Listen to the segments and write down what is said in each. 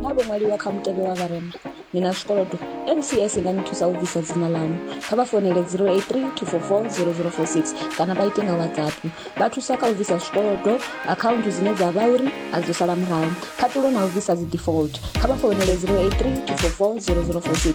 na vho ṅwaliwa kha mutevhe wa vharema ni na zwikolodo mcs i nga ni thusa u bvisa dzina ḽanu kha vha fonele 083 244 0046 kana vha ite nga whatsapp vha thusa kha u bvisa zwikolodo akhaunthu dzine dza vha uri a dzo sala murahu khaṱulo na u bvisa dzi default kha vha fonele 083 244 0046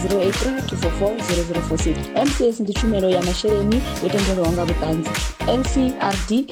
083 244 0046 mcs ndi tshumelo ya masheleni yo tendelwaho nga vhuṱanzi ncrd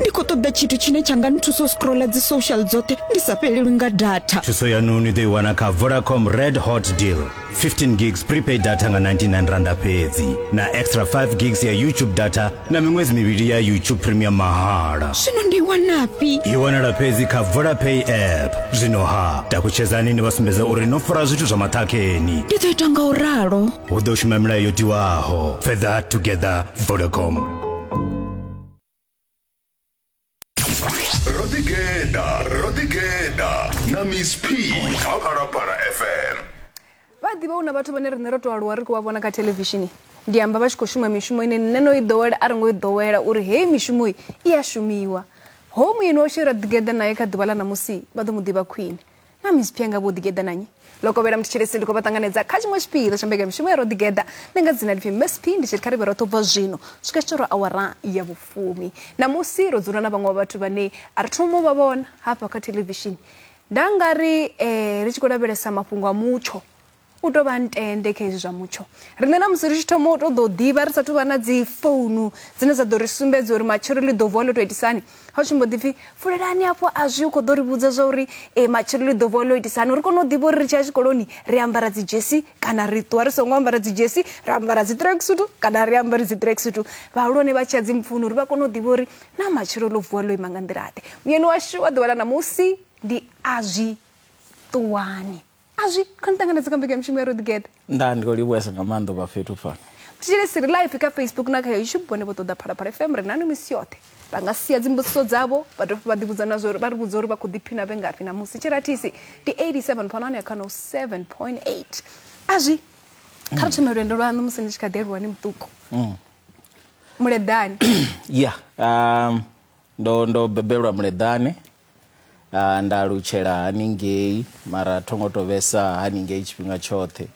ndi khou ṱoḓa tshithu tshine tsha nga nthusa u scrolla dzi social dzoṱhe ndi sa fhelelwi nga data thuso yanu ni ḓo i wana kha vodacom red hot deal 15 gigs prepaid data nga 99 randa fhedzi na extra 5 gigs ya youtube data na miṅwedzi mivhili ya youtube premium mahala zwino ndi i wanafhi i wanala fhedzi kha vodapay app zwino ha takutshedzani ni vha sumbedza uri no fara zwithu zwa maṱhakheni ndi ḓo ita nga u ralo hu ḓo shuma milayo yo tiwaho further together vodacom ro ḓi geḓa ro ḓi geḓa na miss p kha phalaphala fm vha ḓivha hu na vhathu vhane riṋe ro to aluwa ri khou vha vhona kha thelevishini ndi amba vha tshi khou shuma mishumo ine nṋe no i ḓowela a ri ngo i ḓowela uri heyi mishumo i i a shumiwa ho muyeni washu ra ḓigeḓa naye kha ḓuvha ḽa ṋamusi vha ḓo mu ḓivha khwine na miss phianga vho ḓigeḓa na nyi lokovhela mutshilesi ndi khou vha ṱanganedza kha tshiṅwe tshipiḓa tsha mbekanyamushumo ya ro ḓigeḓa ndi nga dzina lipfi msp ndi tshi ri kha ri vhe roṱhe ubva zwino swika tshi tora awara ya vhufumi ṋamusi ro dzula na vhaṅwe wa vhathu vhane a ri thoma vha vhona hafha kha thelevishini nda nga ri um ri tshi khou lavhelesa mafhungo a mutsho u tou vha ntende kha hezwi zwa mutsho riṋe na musi ri tshi thoma u tou ḓo ḓivha ri sathu vha na dzi founu dzine dza ḓo ri sumbedza uri matshelo ḽi ḓo vuwa ḽo tou itisani ha u tsumbo ḓi pfhi fulelani afho a zwi u khou ḓo ri vhudza zwa uri e matshelo ḽi ḓo vuwa ḽo itisani uri kone u ḓivha uri ri tshi ya tshikoloni ri ambara dzi dzhesi kana ri ṱuwa ri songo ambara dzi dzhesi ra ambara dzi treksutu kana ri ambari dzi treksutu vhahulwane vha tshi ya dzi mpfuni uri vha kone u ḓivha uri na matshelo ḽo vuwa ḽo ima nga nḓila ḓe muyeni washu wa ḓuvha ḽa ṋamusi ndi a zwi ṱuwani a zwi kho ni ṱanganedza kha mbekanyamishumo ya roḓigeḓa nda ndi khou livhuesa nga maanḓa u vha fhethu fhano thetshelesi ri live kha facebook na kha youtube vhone vho ṱoḓa phalaphala fm ri nanu misi yoṱhe vha nga sia dzimbudziso dzavho vha dovha vha ḓivhudza na zwori vha ri vhudza uri vha khou ḓiphina vhe ngafhi na musi tshirathisi ndi 87 fhano ane kha no 7.8 a zwi kha ri thome lwendo lwaṋu musi ni tshi kha ḓi aluwa ni muṱuku muleḓani ya um, Ndo ndo bebelwa Muleḓane nda alutshela haningei mara tho ngo to vhesa haningei tshifhinga tshoṱhe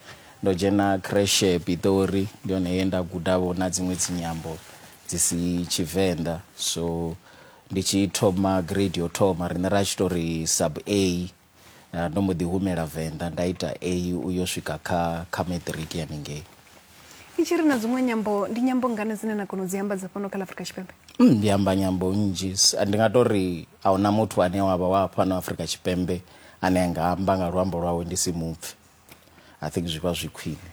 ndo dzhena kreshe Pitori ndi hone he nda guda vho na dziṅwe dzi nyambo dzi si Tshivenḓa so ndi tshi thoma grade yo thoma riṋe ra tshi tori sub A Ndo mbo ḓi humela Venḓa nda ita A u yo swika kha kha matric haningei. Ni tshi ri na dziṅwe nyambo ndi nyambo ngani dzine na kona u dzi amba dza fhano kha ḽa Afrika Tshipembe? Mm, ndi amba nyambo nnzhi. Ndi nga tou ri a huna muthu ane wa vha wa fhano Afrika Tshipembe ane a nga amba nga luambo lwawe ndi si mupfe. I think zwi vha zwi khwine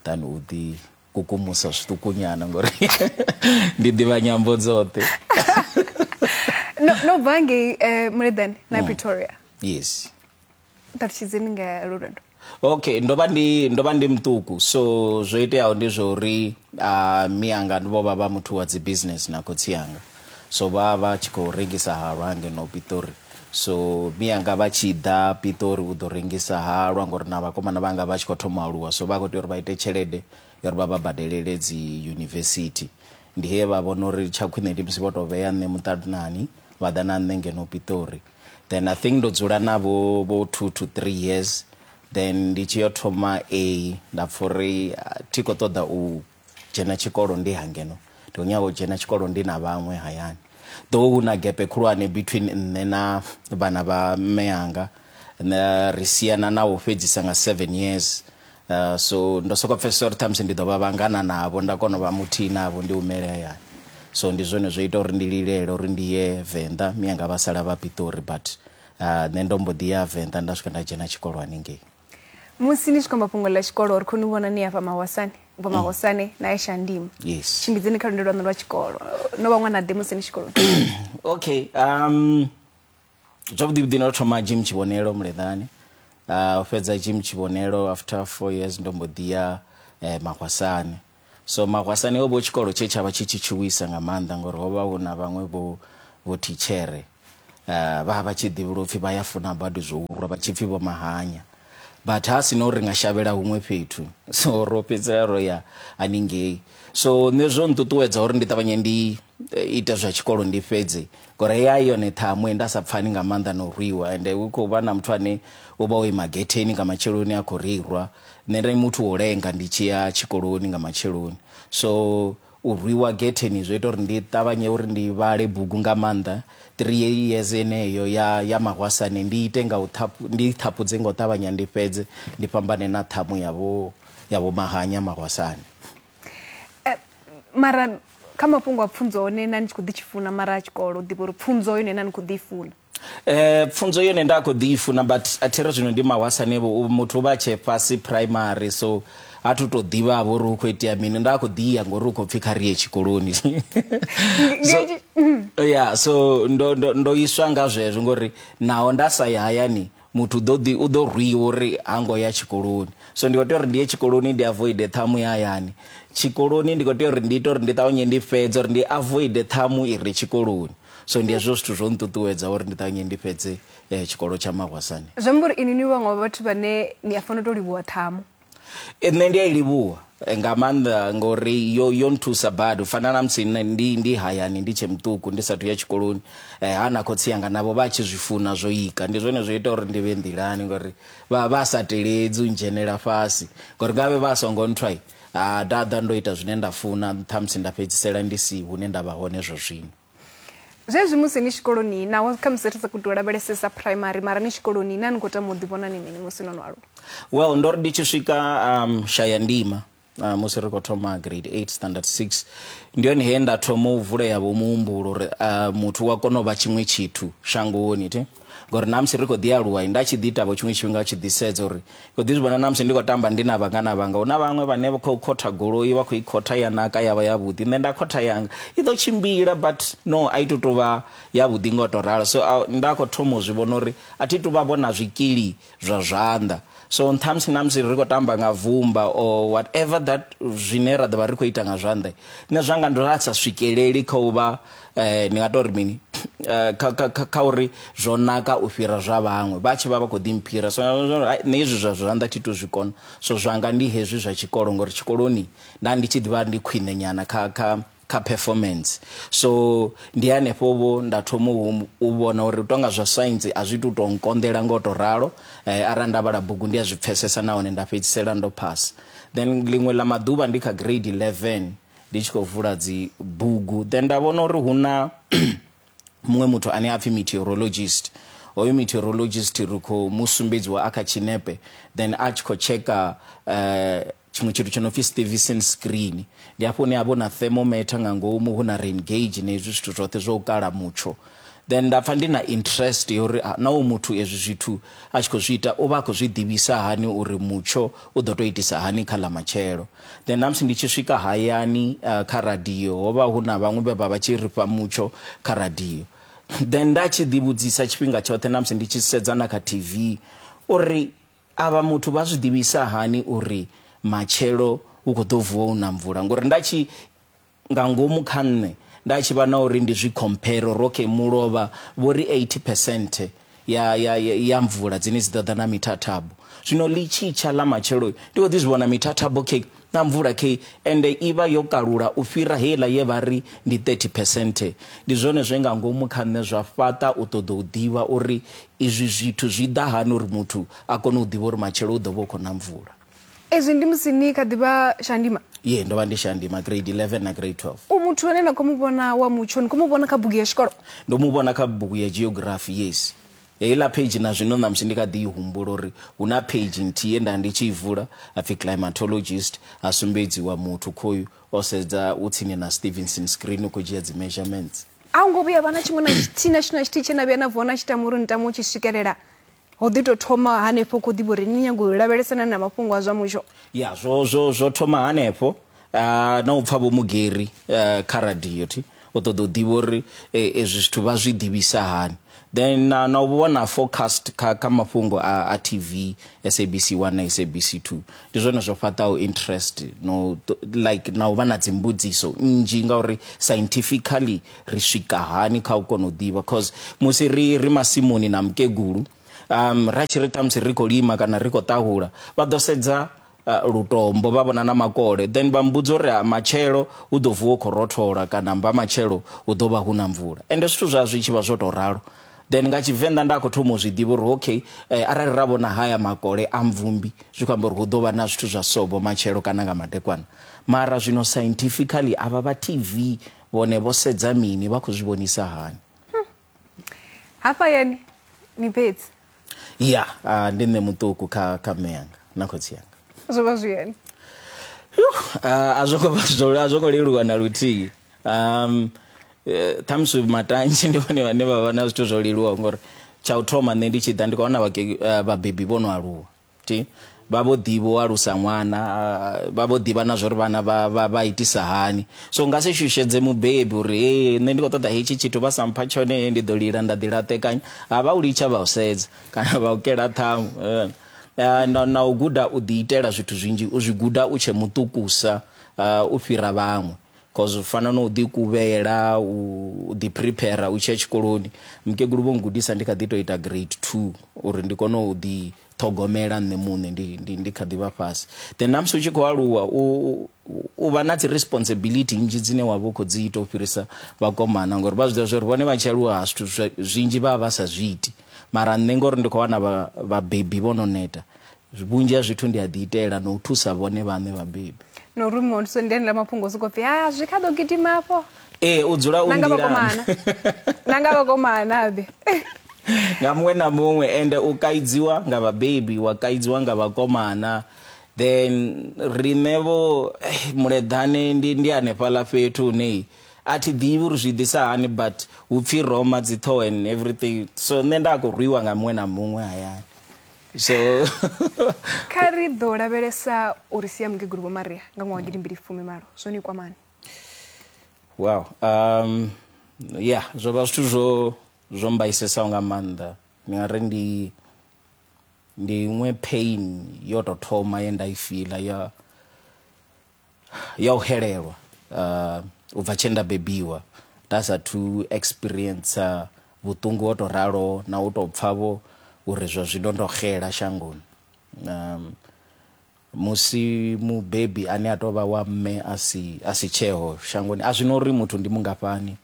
than u ḓi kukumusa zwiṱukunyana ngori ndi ḓivha nyambo dzoṱhe no, no bva ngei eh, muleḓani na mm. pretoria yes ṱalutshedzeni nga lwo lwendo okay ndo vha ndi ndo vha ndi muṱuku so zwo iteaho ndi zwa uri uh, miyanga vho vha vha muthu wa dzi business na khotsi yanga So vha vha tshi khou rengisa halwa ha ngeno Pitori. So mianga vha tshi ḓa Pitori u ḓo rengisa halwa ngori na vhakomana vhanga vha tshi khou thoma aluwa so vha khou tea uri vha ite tshelede ya uri vha vha badelele dzi yunivesithi. Ndi he vha vhona uri tsha khwine ndi musi vho to vhea nṋe muṱanani vha ḓa na nṋe ngeno Pitori. Then I think ndo dzula na vho vho two to three years then ndi tshi yo thoma A nda pfha uri thi khou ṱoḓa u dzhena tshikolo ndi ha ngeno ndi khou nyaga u dzhena tshikolo ndi na vhaṅwe hayani ḓo hu na gepe khulwane between nṋe na vhana vha mme anga ri siana na u fhedzisa nga seven years uh, so ndo soko pfesesa uri ṱhamusi ndi ḓo vha vhangana navho nda kona u vha muthihi navho ndi humele hayani so ndi zwone zwo ita uri ndi lilele uri ndi ye venḓa miyanga vha sala vha piṱori but uh, nṋe ndo mbo ḓi ya venḓa nda swika nda dzhena tshikolo haningei musi ni tshi khou amba fhungo ḽa tshikolo ri khou ni vhona ni afha mahwasane ubva mm. mahwasane na ye shandimo yes tshimbidzeni kha lwendo lwaṋu lwa tshikolo no vha ṅwana ḓe musi ni tshikoloni okay um zwavhuḓivhuḓi ndo thoma jim tshivhonelo muleḓani uh, u fhedza jim tshivhonelo after four years ndo mbo ḓi ya eh, mahwasane So Magwasani ho vha hu tshikolo tshe tsha vha tshi tshi tshuwisa nga maanḓa ngori ho vha hu na vhaṅwe vho vho thitshere uh, vha vha tshi ḓivhula upfhi vha ya funa badi zwo urwa vha tshi pfhi vho mahanya but ha si no ri nga shavhela huṅwe fhethu so ro fhedzisela ro ya haningei so nṋe zwo nṱuṱuwedza uri ndi ṱavhanye ndi ita zwa tshikolo ndi fhedzi ngori hei ai yone ṱhamu ende a sa pfani nga maanḓa na u rwiwa ende hu khou vha na muthu ane u vha o ima getheni nga matsheloni a khou ri rwa nṋe ndi muthu wo lenga ndi tshi ya tshikoloni nga matsheloni so u rwiwa getheni zwo ita uri ndi ṱavhanye uri ndi vhale bugu nga maanḓa three years eneyo ya ya mahwasane ndi ite nga u thapu ndi thapudze nga u ṱavhanya ndi fhedze ndi fhambane na ṱhamu ya vho ya vho mahanya mahwasane eh, mara kha mafhungo a pfunzo one na ni tshi khou ḓi tshi funa mara a tshikolo u ḓivha uri pfunzo yone na ni khou ḓi i funa eh pfunzo yone nda khou ḓi i funa but a thi ri zwino ndi mahwasane vho muthu u vha tshe fhasi primary so a thu tou ḓivha vho ri hu khou itea mini nda khou ḓi ya ngori hu khou pfhi kha ri ye tshikoloni ya so ndo ndo ndo iswa nga zwezwo ngori naho nda sa ya hayani Muthu u ḓo ḓi, u ḓo rwiwa uri ha ngo ya tshikoloni. So ndi khou tea uri ndi ye tshikoloni ndi avoide ṱhamu ya hayani. Tshikoloni ndi khou tea uri ndi ite uri ndi ṱavhanye ndi fhedze uri ndi avoide ṱhamu i re tshikoloni. So ndi hezwo zwithu zwo nṱuṱuwedza uri ndi ṱavhanye ndi fhedze tshikolo tsha mahwasani. Zwi amba uri inwi ni vhaṅwe vha vhathu vhane ni a fanela u tou livhuwa ṱhamu. E, nṋe ndi a i livhuwa eh, nga maanḓa ngori yo yo nthusa badi u fana na musi nṋe ndi ndi hayani ndi tshe muṱuku ndi sathu ya tshikoloni eh, ha na khotsi yanga navho vha tshi zwi funa zwo ika ndi zwone zwo ita uri ndi vhe nḓilani ngori vha vha sa teledzi u ndzhenela fhasi ngori ngavhe vha songo nthwai ha dada ndo ita zwine nda funa ṱhamusi nda fhedzisela ndi si hune nda vha hone zwo zwino zwezwi musi ni tshikoloni naho khamusi ri sa khou tou lavhelesesa primary mara ni tshikoloni na ni khou tama u ḓivhona ni mini musi no no aluwa well ndo ri ndi tshi swika um, shaya ndima uh, musi ri khou thoma grade 8 standard 6 ndi hone he nda thoma u vulea vho muhumbulo uri uh, muthu wa kona u vha tshiṅwe tshithu shangoni thi ngori namusi ri khou ḓi aluwa nda tshi ḓi tavho tshiṅwe tshifhinga tshi ḓi sedza uri khou ḓi zwi vhona namusi ndi khou tamba ndi na vhangana vhanga hu na vhaṅwe vhane vha khou khotha goloi vha khou i khotha ya naka ya vha yavhuḓi nṋe nda khotha yanga i ḓo tshimbila but no a i to tou vha yavhuḓi nga u tou ralo so nda khou thoma u zwi vhona uri a thi tu vha vhona zwikili zwa zwanḓa so nthamusi namusi ri khou tamba nga vumba or whatever that zwine ra ḓo vha ri khou ita nga zwanḓa nṋe zwanga ndo a sa swikeleli kha u vha um ndi nga tou ri mini eh, kha uri zwo naka u fhira zwa vhaṅwe vha tshi vha vha khou ḓimphira so nṋe hezwi zwa zwanḓa thi to zwi kona so zwanga ndi hezwi zwa tshikolo ngori tshikoloni nda ndi tshi ḓivha ndi khwine nyana kha kha kha performance so ndi hanefho vho nda thoma u vhona uri tonga zwa science a zwi tu to nkonḓela ngo to ralo eh, ara nda vhala bugu ndi a zwi pfesesa nahone nda fhedzisela ndo pass then ḽiṅwe ḽa maḓuvha ndi kha grade 11 ndi tshi khou vula dzi bugu then nda vhona uri hu na muṅwe muthu ane a pfhi meteorologist hoyo meteorologist ri khou mu sumbedziwa a kha tshinepe then a tshi khou tsheka uh, eh, Tshiṅwe tshithu tsho no pfi Stevison screen, ndi hafho hune ha vha hu na thermometer nga ngomu, hu na rain gauge na hezwi zwithu zwoṱhe zwa u kala mutsho. Then nda pfa ndi na interest ya uri naa hoyu muthu ezwi zwithu a tshi khou zwi ita u vha a khou zwi ḓivhisa hani uri mutsho u ḓo tou itisa hani kha ḽa matshelo. Then na musi ndi tshi swika hayani kha radio ho vha hu na vhaṅwe vhe vha vha tshi ri fha mutsho kha radio. Then nda tshi ḓivhudzisa tshifhinga tshoṱhe na musi ndi tshi sedza na kha TV uri Avha muthu vha zwi ḓivhisa hani uri matshelo hu khou ḓo vuwa hu na mvula? Ngori nda tshi nga ngomu kha nṋe nda tshi vha na uri ndi zwi compare uri okay mulovha vho ri 80 percent ya ya ya mvula dzine dzi ḓo ḓa na mithathambo zwino ḽi tshi tsha ḽa matshelo ndi kho ḓi zwi vhona mithathambo okay na mvula khe ende i vha yo kalula u fhira heiḽa ye vha ri ndi 30 phesenthe. Ndi zwone zwe nga ngomu kha nṋe zwa fhaṱa u ṱoḓa u ḓivha uri izwi zwithu zwi ḓa hani uri muthu a kone u ḓivha uri matshelo hu ḓo vha hu khou na mvula. Ezwi ndi musi ni kha ḓi vha shandima? Yee, ndo vha ndi shandima, Grade 11 na Grade 12. U muthu ane na khou mu vhona wa mutsho, ni khou mu vhona kha bugu ya tshikolo? Ndo mu vhona kha bugu ya Geography, yes. Heiḽa page na zwino ṋamusi ndi kha ḓi i humbula uri hu na page nthihi ye nda ndi tshi i vula ha pfi Climatologist ha sumbedziwa muthu khoyu o sedza u tsini na Stevenson screen u khou dzhia dzi measurements. A hu ngo vhuya ha vha na tshiṅwe na tshithihi na tshithihi na tshithihi tshe na vhuya na vuwa na tshi tama uri ni tama u tshi swikelela? Ho ḓi tou thoma hanefho u khou ḓivha uri ni nyaga u lavhelesana na mafhungo a zwa mutsho? Ya, zwo, zwo, zwo thoma hanefho. Ah, na u pfa vho mugeri eh, kha radio thi u ṱoḓa u ḓivha uri eh, ezwi zwithu vha zwi ḓivhisa hani then na, na u vhona forecast kha, kha mafhungo a, a tv sabc 1 na sabc 2 ndi zwone zwo fhaṱaho interest no ṱo- like na u vha na dzimbudziso nnzhi ngauri scientifically ri swika hani kha u kona u ḓivha cause musi ri, ri masimuni na mukegulu um, ra tshi ri ṱhamusi ri khou lima kana ri khou ṱahula vha ḓo sedza uh, lutombo vha vhona na makole then vha mbudza uri ha matshelo u ḓo vuwa u khou rothola kana mba matshelo hu ḓo vha hu na mvula ende zwithu zwa zwi tshi vha zwo tou ralo then nga tshivenḓa nda khou thoma u zwi ḓivha uri okay eh, arali ra vhona haya makole a mvumbi zwi khou amba uri hu ḓo vha na zwithu zwa sobo matshelo kana nga madekwana mara zwino scientifically avha vha tv vhone vho sedza mini vha khou zwi vhonisa hani hafha yeni ni fhedzi ya uh, ndi nṋe muṱuku kha kha mme yanga na khotsi yanga zwo vha zwi yeni a zwo ngo vha zwo a zwo ngo leluwa na luthihi um eh, ṱhamusi matanzhe ndi vhone vhane vha vha na zwithu zwo leluwaho ngori tsha u thoma nṋe ndi tshi ḓa ndi khou wana vhake- eh, vhabebi vho no aluwa Ti, vha vho ḓi vho alusa ṅwana, vha vho ḓivha na zwori vhana vha vha vha itisa hani. So nga si shushedze mubebi uri hee nṋe ndi kho ṱoḓa hetshi tshithu vha sa mpha tshone hee ndi ḓo lila nda ḓi laṱekanya. Ha vha u litsha vha u sedza kana vha u kela ṱhamu. Na na u guda u ḓi itela zwithu zwinzhi u zwi guda u tshe muṱukusa u fhira vhaṅwe. Cause u fana na u ḓi kuvhela u ḓi prepare u tshiya tshikoloni mukegulu vho ngudisa ndi kha ḓi to ita grade 2 uri ndi kone u ḓi ṱhogomela nṋe muṋe ndi ndi ndi kha ḓivha fhasi then namusi u tshi khou aluwa u u vha na dzi responsibility nnzhi dzine wa vha u khou dzi ita u fhirisa vhakomana ngori vha zwiḓivha zwori vhone vha tshi aluwa ha zwithu zwinzhi vha vha vha sa zwi iti mara nṋe ngori ndi khou wana vhabebi vho no neta Vhunzhi ha zwithu ndi a ḓiitela na u thusa vhone vhaṋe vhabebi. Na uri muthu ndi enela mafhungo sokou pfi ha zwi kha ḓo gidima afho. Ee u dzula u nḓilani. Na nga vhakomana ḓe. Nga muṅwe na muṅwe ende u kaidziwa nga vhabebi wa kaidziwa nga vhakomana then riṋe vho eh, muleḓane ndi ndi hanefhaḽa fhethu hune a thi ḓivhi uri zwi ḓisa hani but hu pfhi roma dzi ṱhoho and everything so nṋe nda khou rwiwa nga muṅwe na muṅwe hayani so kha ri ḓo lavhelesa uri sia mukegulu vho maria nga ṅwaha wa gidimbili fumi malo zwo ni kwamani wow um ya zwo vha zwithu zwo zwo mbaisesaho nga maanḓa ni nga ri ndi ndi iṅwe pain yo tou thoma ye nda i fila ya ya u xelelwa uh, u bva tshe nda bebiwa nda sathu experience vhuṱungu ho to ralo na u to pfa vho uri zwa zwino ndo xela shangoni um, musi mubebi ane a tou vha wa mme a si a si tsheo shangoni a zwino uri muthu ndi mungafhani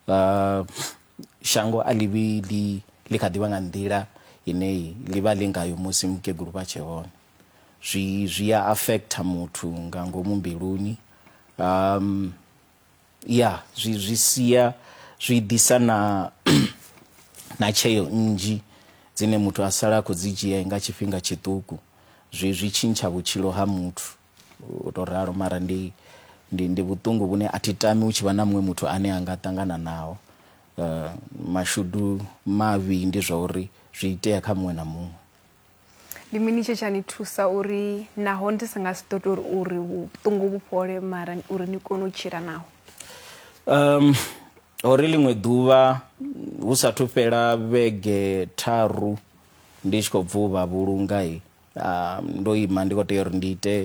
uh, shango a ḽivhi ḽi ḽi kha ḓivha nga nḓila ine ḽi vha ḽi ngayo musi mukegulu vha tshe hone zwi zwi ya affecta muthu nga ngomu mbiluni um ya zwi zwi sia zwi ḓisa na na tsheo nnzhi dzine muthu a sala a khou dzi dzhia nga tshifhinga tshiṱuku zwi zwi tshintsha vhutshilo ha muthu u tou ralo mara ndi ndi ndi vhuṱungu vhune a thi tami u tshi vha na muṅwe muthu ane a nga ṱangana naho uh, mashudu mavhi ndi zwa uri zwi itea kha muṅwe na muṅwe ndi mini tshe tsha ni thusa uri naho ndi si nga si ḓo tori uri vhuṱungu vhu fhole mara uri ni kone u tshila naho um hori ḽiṅwe ḓuvha hu sathu fhela vhege tharu ndi tshi khou bva u vha vhulunga i um, ndo ima ndi khou tea uri ndi ite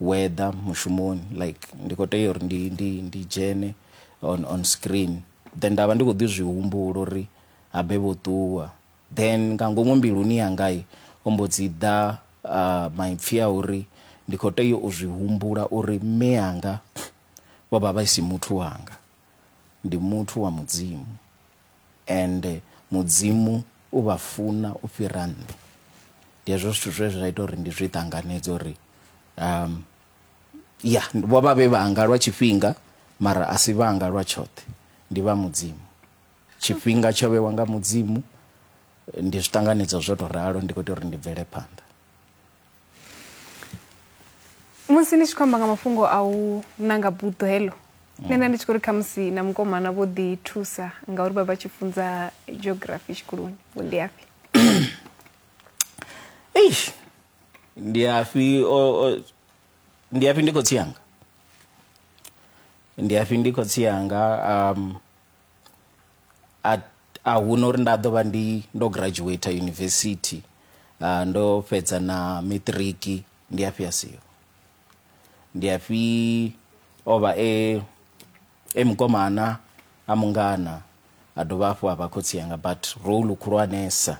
weather mushumoni like ndi khou tea uri ndi, ndi, ndi dzhene on, on screen then nda vha ndi khou ḓi zwi humbula uri habe vho ṱuwa Then nga ngomu mbiluni yanga ho mbo dzi ḓa maipfi a uri ndi khou tea u zwi humbula uri mme anga vho vha vha si muthu wanga, ndi muthu wa Mudzimu and Mudzimu u vha funa u fhira nṋe. Ndi hezwo zwithu zwe zwa ita uri ndi zwi ṱanganedze uri um ya vho vha vhe vhanga lwa tshifhinga mara a si vhanga lwa tshoṱhe, ndi vha Mudzimu. tshifhinga tsho vhewa nga mudzimu ndi zwi ṱanganedza zwo to ralo ndi khou tea uri ndi bvele phanḓa musi ni tshi khou amba nga mafhungo a u nanga buḓo heḽo nṋe nda ndi tshi khou ri khamusi na mukomana vho ḓi thusa ngauri vha vha tshi funza geography tshikoloni vho ndi afhi eish ndi afhi ndi afhi ndi khotsi yanga ndi afhi ndi khotsi yanga um a a huna uri nda ḓo vha ndi ndo graduate university uh, ndo fhedza na matric ndi afhi a siho ndi afhi o vha e e mukomana a mungana a dovha hafhu a vha khotsi yanga but role khulwanesa